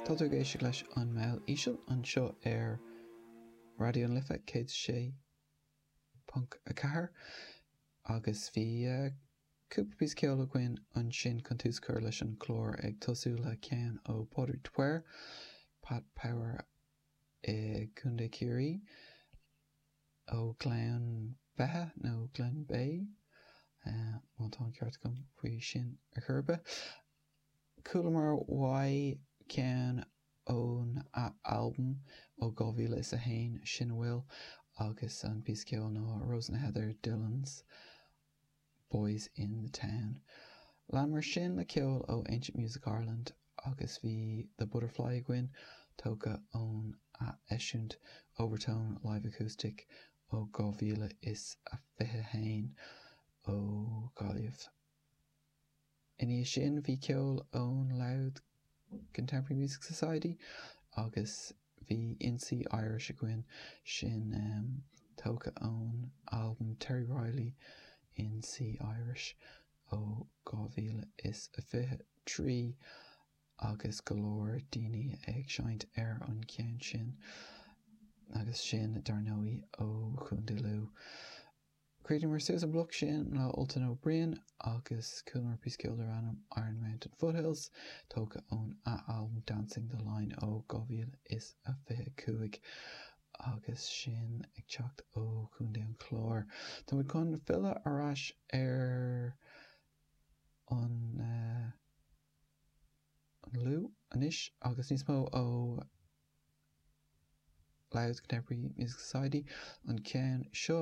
Tá tú ag éisteacht leis An mBaile Íseal anseo ar Raidió na Life 106.4 agus bhí cúpla píosa ceoil againn ansin chun tús a chur leis an chlár ag tosú le ceann ó Pádraig de Paor, Pat Power i gContae Chiarraí, ó Ghleann Beithe nó Glenbeigh má tá an ceart agam faoi sin ar chor ar bith. Chualamar uaidh ceann óna albam ó 2001, Sin a Bhfuil, agus an píosa ceoil ná Rose and Heather, Dillon's, Boys in the Town. Leanamar sin le ceol ó Ancient Music Ireland agus bhí The Butterfly againn, tógtha óna eisiúint Overtone Live Acoustic ó 2021 ó Ghaillimh. Ina dhiaidh sin bhí ceol ón Louth Contemporary Music Society agus bhí In C Irish againn, sin tógtha ón albam Terry Riley, In C Irish ó 2023, agus go leor daoine ag seinnt ar an gceann sin, agus sin dar ndóigh ó Chontae Lú. Chríochnaíomar suas an bloc sin le Ultan O'Brien agus chualamar píosa ceoil darbh ainm 'Iron Mountain Foothills', tógtha ón albam 'Dancing the Line' ó 2025, agus sin ag teacht ó Chontae an Chláir. Tá muid chun filleadh ar ais ar an Lú anois agus níos mó ó. Louth Contemporary Music Society an ceann seo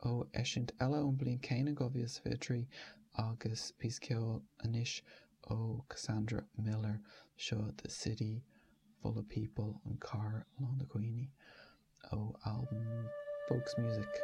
ó eisiúint eile ón mbliain céanna, 2023, agus píosa ceoil anois ó Cassandra Miller, seo The City Full of People, An Chathair Lán de Dhaoine, ó albam Folks Music.